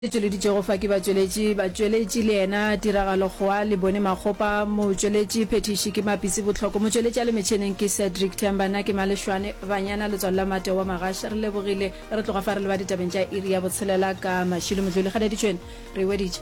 E tšweleditšego fa ke batšweletši, batšweletši le yena tiragalo goa le bone makgopa, motšweletši phethiši ke Mapitsi Botlhoko, motšweletši a le metšheneng ke Cedric Themba, nna ke Malešwane Banyana letswalo la Mate wa Magaš. Re lebogile. Re tloga fa re leba ditabeng tša iri ya botshelela ka Mashilo Modluli. Kganeditšweni re e weditše.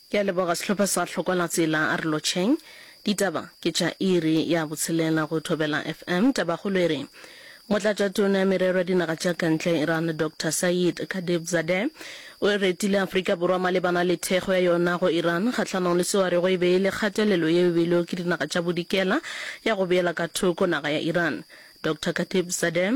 Ke a leboga sehlopha sa Hlokwalatsela a re lotšheng. Ditaba ke tša iri ya botshelela go Thobela FM. Tabakgolo e re, Motlatšatona ya Merero ya Dinaga tša Kantle ya Iran Doctor Saeed Khatibzadeh o e retile Afrika Borwa malebana le thekgo ya yona go Iran kgahlanong le seo a rego e be e le kgatelelo yeo e beilwego ke dinaga tša bodikela ya go beela ka thoko naga ya Iran. Doctor Khatibzadeh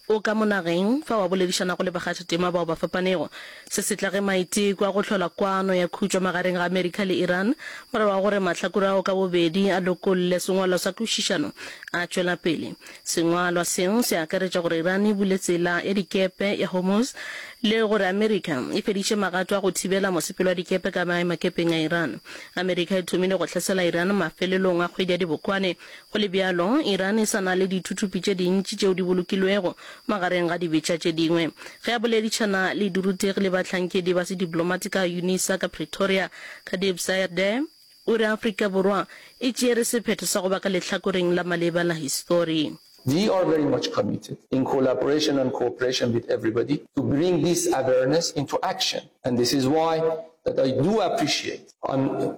O ka mo nageng, fa wa boledišanago le bakgathatema bao ba fapanego. Se se tla ge maiteko a go hlola kwano ya khutšo magareng ga Amerika le Iran, morago ga gore mahlakore ao ka bobedi a lokolle sengwalwa sa kwešišano, a tšwela pele. Sengwalwa seo se akaretša gore Iran e bule tsela ya dikepe ya Hormuz le gore Amerika e fediše magato a go thibela mosepelo wa dikepe ka maemakepeng a Iran. Amerika e thomile go hlasela Iran mafelelong a kgwedi ya Dibokwane Go le bjalo, Iran e sa na le dithuthupi tše dintši tšeo di bolokilwego, magareng ga dibetša tše dingwe. Ge a boledišana le dirutegi le bahlankedi ba sediplomati ka Unisa ka Pretoria, Khatib Sairdeh o re Afrika Borwa e tšere sephetho sa go ba ka lehlakoreng la maleba la histori. We are very much committed, in collaboration and cooperation with everybody, to bring this awareness into action and this is why that I do appreciate on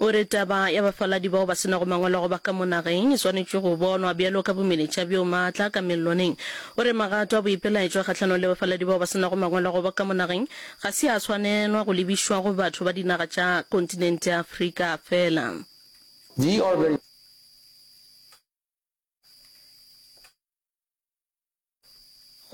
O re, Taba ya bafaladi bao ba se nago mangwalo go ba ka mo nageng e swanetše go bonwa bjalo ka bomeletša bjo maatla ka melloneng. O re, Magato a boipelaetšwa kgahlanong le bafaladi bao ba se nago mangwalo go ba ka mo nageng ga se a swanelwa go lebišwa go batho ba dinaga tša kontinente ya Afrika feela. Di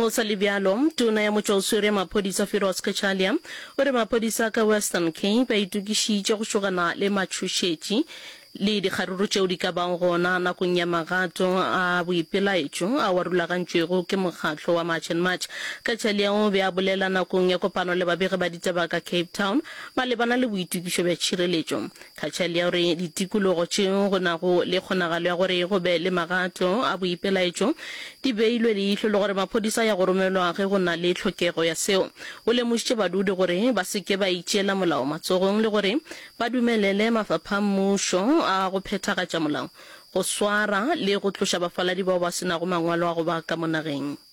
Go sa le bjalo, tona ya motšwaoswere ya maphodisa Firoz Cachalia o re maphodisa ka Western Cape a itokišitše go tšhogana le matšhošetši le dikgaruru tšeo di ka bago gona nakong ya magato a boipelaetšo ao a rulagantšwego ke mokgatlo wa March and March. Cachalia o be a bolela nakong ya kopano le babegi ba ditaba ka Cape Town malebana le boitokišo bja tšhireletšo. Khatchalia o re, Ditikologo tšeo go nago le kgonagalo ya gore go be le magato a boipelaetšo di beilwe leihlo le gore maphodisa a ya go romelwa ge go na le tlhokego ya seo. O lemošitše badudi gore ba se ke ba itšeela molao matsogong le gore ba dumelele mafapha a mmušo a go phethagatša molao go swara le go tloša bafaladi bao ba se nago mangwalo a go ba ka mo nageng.